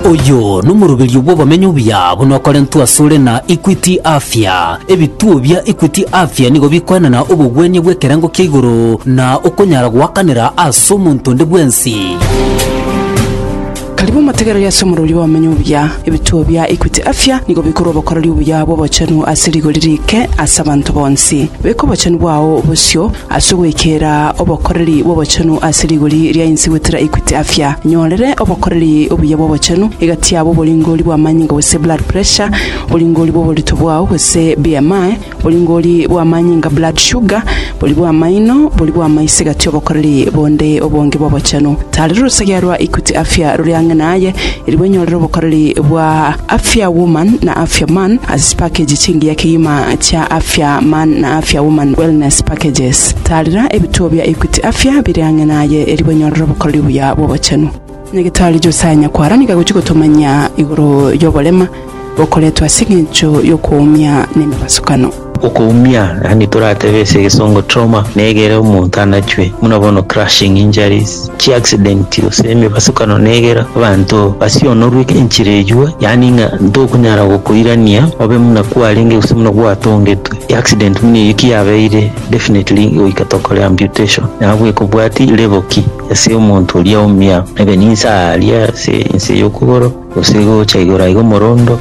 Oyo nomoroberio bw'obomenyo obuya buna okorentwe asore na Equity Afya. Ebituo bia Equity Afya nigo bikoenana obogwenia bw'ekerengo kia igoro na okonyara goakanera ase omonto onde bwensi. Karibu motegereri ase omoroberio bw'obomenyo obuya. Ebituo bia Equity Afya nigo bikorwa obokoreri obuya bw'obochenu ase rigori riike ase abanto bonsi. Beka obochenu bwao bosio Ase ogwekera obokoreri bw'obochenu ase rigori ria inse gwetera Equity Afya, nyorere obokoreri obuya bw'obochenu egati yabo oboringori bw'amanyinga gose blood pressure, oboringori bw'oborito bwao gose BMI, oboringori bw'amanyinga blood sugar, bori bw'amaino, bori bw'amaiso egati y'obokoreri bonde obonge bw'obochenu. Tarera orosegea rwa Equity Afya rore ang'e naye, Erio bwenyorere obokoreri bwa Afya Woman na Afya Man ase chipakeji chingiya kegima chia Afya Man na Afya Woman Wellness Packages. Taarera ebituo bia Equity Afya bire ang'e naye erio bwenyorere obokoreri buya bw'obochenu. Nyagetari Josiah Nyakwara nigo agochia gotomanyia igoro y'oborema. Okoretwa ase engencho y'okoumia nemebasukano. Okoumia, yaani toratebe ase egesongo trauma, na egere omonto anachwe, buna bono crushing injuries, chiaccidenti, gose emebasukano na egere abanto basionorwe enchera eyio, yaani ng'a ntokunyara gokoirania obe buna kwarenge gose buna gwatongetwe. Eaccident buna eyio ki yabeire, definitely goika tokore amputation. Nabo ekobwati level ki ase omonto oria oumia, maybe ninse aria ase ense y'okogoro, Gose gocha igoro aiga omorondo,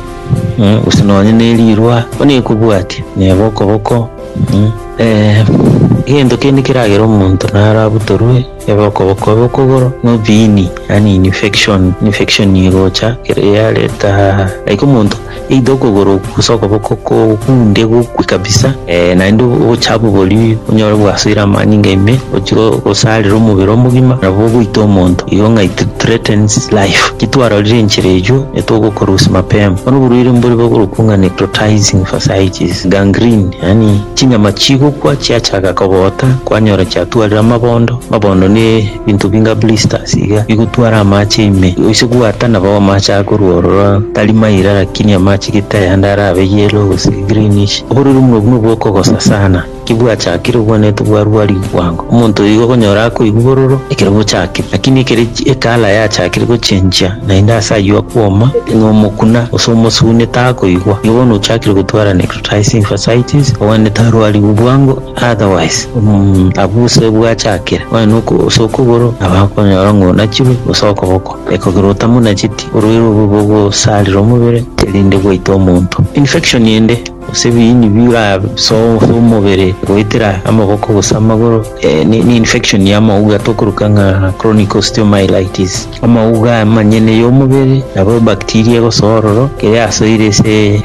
eh, gose nonye ne rirwa, bono ekobwatia, neba okoboko, eh, eh, egento kende keragere omonto naro abutorwe, ebe okoboko, ebe okogoro, na obiini, yaani infection, infection egocha, kere yareta, like omonto. Either okogoro okwo gose okoboko kokunde gokwe kabisa eh, naende obochafu oboria onyore bwasoire amanyinga ime ochire osarire omobere omogima nabo ogoita omonto igo ng'a it threatens life kitwarorire enchera eyio etogokora gose mapema bono oborwaire mbore bokorokwa ng'a necrotizing fasciitis gangrene yaani chinyama chigokwa chiachaka kogota kwanyora chiatwarire amabondo amabondo ne Binto binga blisters iga bigotwara amache ime gose bwata nabo amache akorwa ororo tari maira lakini amache gete ayande arabe yellow gose greenish oborero buna obwo nobwo okogosa sana kibwachakire obwane tibwarua rigwango omonto oyo igo okonyora akoigwa bororo ekero bochakire lakini ekero ecolour yachakire gochenchia naende ase aywo akwoma nomokuna gose omosune takoigwa igo bono ochakire gotwara necrotizing fascitis obwane tarwarigwa bwango. Otherwise, mm, abwo ase bwachakire, onye noko ase okogoro, nabo akonyora ng'a onachirwe, gose okoboko. Ekogera otamonacheti, orwaire obo bogosarera omobere, erinde gwaita omonto. Infection ende, gose ebiini birasoe ase omobere goetera amaboko gose amagoro, eh, ni ni infection y'amauga tokoroka ng'a chronic osteomyelitis. Omouga amanyene y'omobere nabo ebaktiria egosoa ororo, keria yasoire ase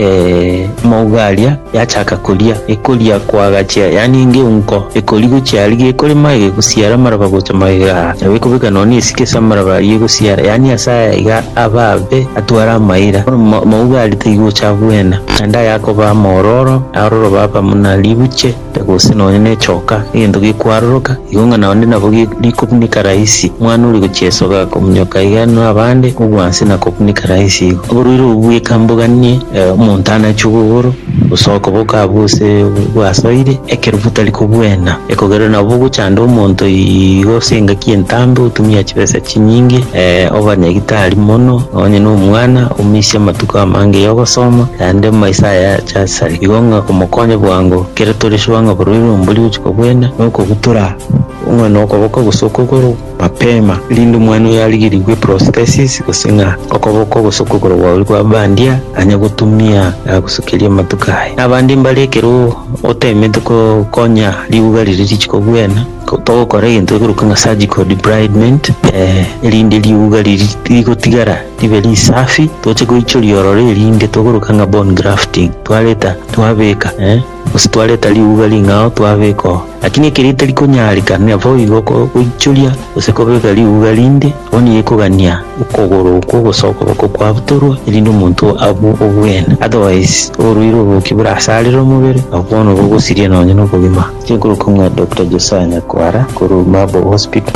omouga aria yachaka koria, ekoria koagachia, yaani engeunko ekori gochia aria gekorema egegosiara amaraba gocha magega aa, nabo ekobeka nonya na esike ase amaraba aria egosiara, yaani ase aya iga aba abe atware amaira. Bono omouga aria taigocha agwena, naende ayakoba amoororo, aroro baba buna ribuche. Gose nonya nechoka, egento gekwaroroka, igo ng'a naende nabo rikobunika rahisi. Omwana oria gochia esoga akomunyoka iga na abande obwansi na kobunika rahisi igo. Oborwaire obwo bweka mboganie, omonto anachwe obogoro, gose okoboko abwo gose bwasoire, ekero botari kobwena, ekogererwa nabo gochanda omonto igo ase engaki entambe, otumia chibesa chinyinge, oba nyagitari mono, nonya nomwana, omisie amatuko amange yogosoma, naende maiso aya. Jasoni. Igo ng'a omokonye bwango kere tore sure ng'a boroire ombori ogochia kobwena na okogutora ong'we na okoboko gose okogoro mapema, erinde omwana oyo arigerigwe prosthesis gose ng'a okoboko gose okogoro gwaye oria kwa bandia anye gotumia agosokerie amatuko aye. Na abande mbare ekero otemete kokonya ribuga riria richie kobwena, togokora egento gekorokwa ng'a surgical debridement, erinde ribuga riria rigotigara. Ribe risafi, toche goichoria ororo erinde togoroka ng'a bone grafting, twareta twabeka eh, gose twareta riuga ring'ao twabeka oo. Lakini ekero etari konyareka, naboigo goichoria gose kobeka riuga rinde, abwo nigo ekogania okogoro okwo gose okoboko kwabutorwa, erinde omonto abue obwene. Otherwise, oborwaire obo ki borasarere omobere, na bono bogosiria nonye nobogima. Chikorokong'a Doctor Josiah Nyakwara korwa Marble Hospital.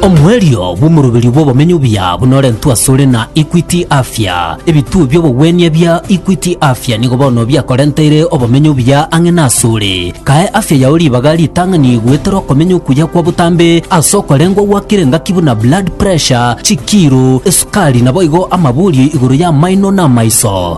Omoerio bw'omoroberio bw'obomenyo obuya bunorentwe asore na Equity Afya. Ebituo bi'obogwenia bia Equity Afya nigo bono biakorenteire obomenyo obuya ang'e nasore. Kae afya yao ribaga ritang'ani goetera okomenya okuya kwa botambe ase okorengwa gwakire engaki buna blood pressure, chikiro, esukari naboigo amaborio igoro y'amaino na amaiso.